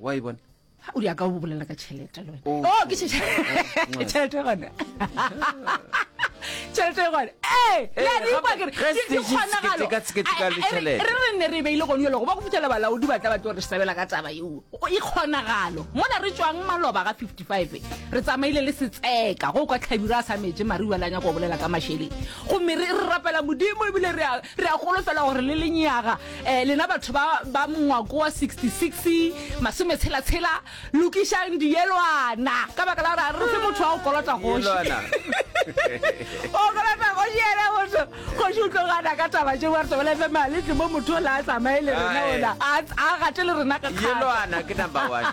wa e bona o di a ka o bolela ka tšhelete le wena o oh, oh, ke tšhelete gona tšhelete e gone ee re re ne re beile gone yolo go ba go fitlhela balaodi ba tla ba tlo re sebela ka taba eo e kgonagalo mona re tswang maloba ga 55 re tsamaile le setseka go kwa tlhabiro a sa metse mare uela nyako bolela ka mašeleng gomme re rapela modimo ebile re a golofela gore le lenyaga Eh, lena batho ba, ba mongwako wa 66 masome tshela tshela lokišang diyelwana ka baka la gore a re fe motho wa go kolota goši o kolota goši ene motho goši o tlo gana ka taba tšeo wa re tobela fe maletle mo motho o la a tsamaye le rena ona a gate le rena ka kgatelwana ke number one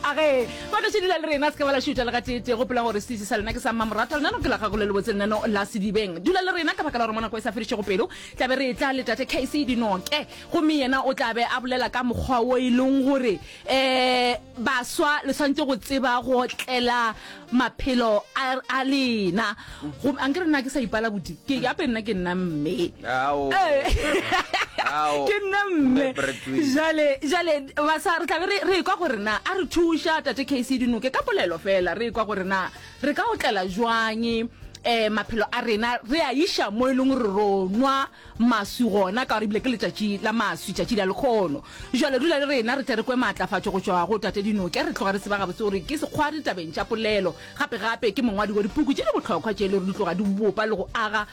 a ge ba tlo sedila le rena se ka ba la šutha le gateetee gopela gore sese sa lena ke sa mmamorata lenano ke la gago le lebotse lenano la sedibeng dula le rena ka baka la gore monako e sa fedišego pelo Tla be re etla le Tate Casey dinoke, gomme yena o tla be a bolela ka mokgwa wo e lego gore, ee, baswa le swanetše go tseba go otlela maphelo a, a lena. Gomme, a nke re nna ke sa ipala bodi? Ke, gape nna ke nna mme. Ao. Ee. Ao. Ke nna mme. Jale, jale, baswa re tla be re, re ekwa gore na, a re thuša Tate Casey dinoke ka polelo feela, re ekwa gore na, Re ka otlela bjang um maphelo a rena re a iša mo e leng gore ro nwa maswi gona ka gore ebile ke letšatši la maswi tšatši la lekgono jale dula le rena re tle re kwe maatlafatšo go tšwa go tate dinoke re tloga re tseba gabotse gore ke sekgwari tabeng tša polelo gape gape ke mongwadi wa dipuku tše di bohlokwa tše e le gore di tloga di bopa le go aga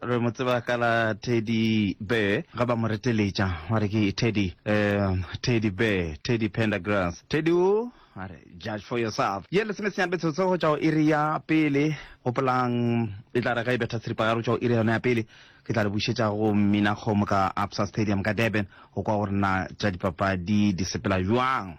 re mo tseba ka la teddy bear ga ba mo reteletša wa re ke teddy um teddy bear teddy pendergrass teddy o a re judge for yourself ye lesomesenyane betsotso go tšwa go iri ya pele gopolang e tla re ga e betha seripagare go tšwa go iri yona ya pele ke tla le bušetša go minakgomo ka absa stadium ka durban go kwa gore na tša dipapadi di sepela jwang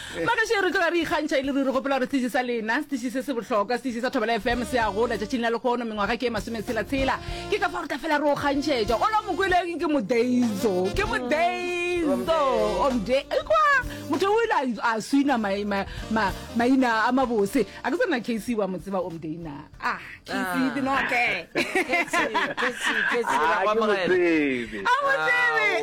Ba gešo e re tloga re ikgantšha e le ruri gopola gore setiši sa lena, setiši se se bohlokwa, setiši sa Thobela FM se a gola tšatšing la lekgono mengwaga ke e masometshela-tshela. Ke ka fao re tla fela re o kgantšhetša. Ola Mokweleng ke modeizo, ke modeizo. Omde, ekwa motho o ile a swina mai- ma- ma- maina a mabose. A ke tsena KC wa mo tseba Omde na? Ah, KC di noke. Ah, ke mo tsebe. A mo tsebe, Ao,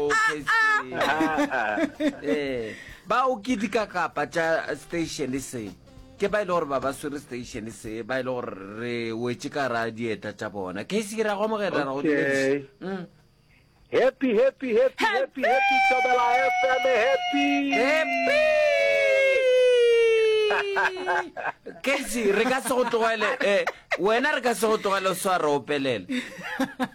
ah, ah. Kgetsi. Ah, ah. Eh. Ba o ketika kapa tša station se ke ba ile gore ba ba swere station se ba ile gore re wetše ka ra dieta tša bona case ke ra go amogela ra go okay. mm. happy happy happy happy happy tobela fm happy happy case re ka se go tlogele eh wena re ka se go tlogele o swara opelele